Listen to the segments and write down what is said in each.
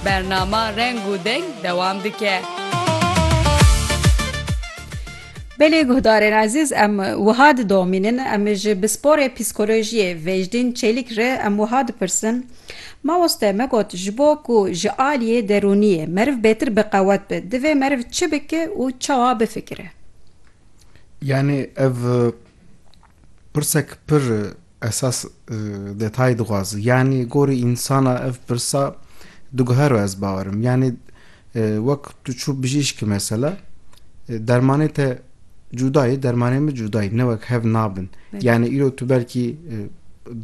Bernama Reng û Deng dewam dike. Belê guhdarên ezîz em wiha didomînin em ji pisporê psîkolojiyê Vêjdîn Çelîk re em wiha dipirsin, Mamoste me got ji bo ku ji aliyê derûniyê meriv bêtir biqewet be divê meriv çi bike û çawa bifikire? Yanî ev Pirsek pir esas detayî dixwaz. Yanî gorî însana ev pirsa diguhero ez bawer im. Yanî wek tu çû bijîşkî mesela dermanê te cûda yê dermanê min cûda yê ne wek hev nabin. Yanî îro tu belkî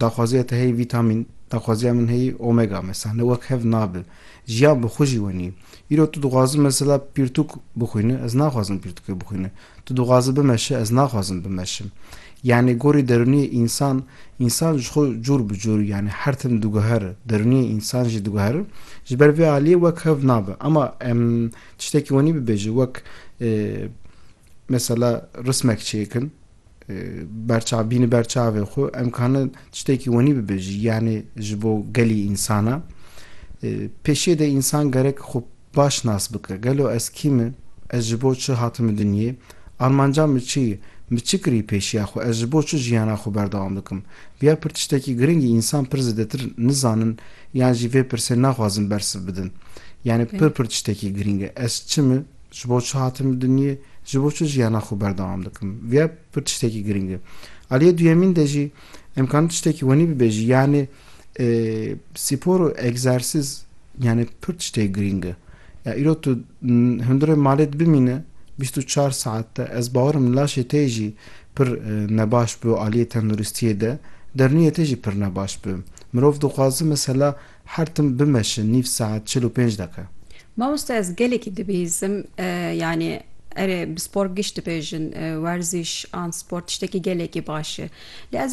daxwaziya te heyî vîtamîn daxwaziya min heyî omega mesela ne wek hev nabe. Jiyan bi xwe jî wenî. Îro tu dixwazi mesela pirtûk bixwîni, ez naxwazim pirtûkê bixwîni. Tu dixwazi bimeşi, ez naxwazim bimeşim. Yanî gorî derûniyê însan, însan ji xwe cûr bi cûr yanî her tim diguher, derûniyê însan jî diguher. Ji ber vê aliyê wek hev nabe. Ema em tiştekî wenî bibêjin wek mesela rismek çêkin, berçav bîni berçavê xwe em kana tiştekî wenî bibêjî yanê ji bo gelî însana pêşê de însan gerek xwe baş nas bike gelo ez kî me ez ji bo çi hatime dinyê armanca min çi ye min çi kirî pêşiya xwe ez ji bo çi jiyana xwe berdewam bikim viya pir tiştekî girîngî însan pir zêdetir nizanin yan jî vê pirsê naxwazin bersiv bidin yanê pir pir tiştekî girîng e ez çi me Ji bo çi hatim li dinyê, ji bo çi jiyana xwe berdewam dikim? Vya pir tiştekî girîng e. Aliyê duyemîn de jî em kanî tiştekî wenî bibêjî yanê spor û egzersîz yanê pir tiştê girîng e. Ya îro tu hundirê malê dibimîne bîst û çar saet de ez bawer im laşê te yê jî pir nebaş bi aliyê tenduristiyê de, derûniyê te jî pir nebaş bi. Mirov dixwaze mesela Her tim bimeşin nîv saet çil û pênc deqe. Mamoste ez gelekî dibihîzim yanî erê bi spor giş dibêjin werzîş an spor tiştekî gelekî baş e lê ez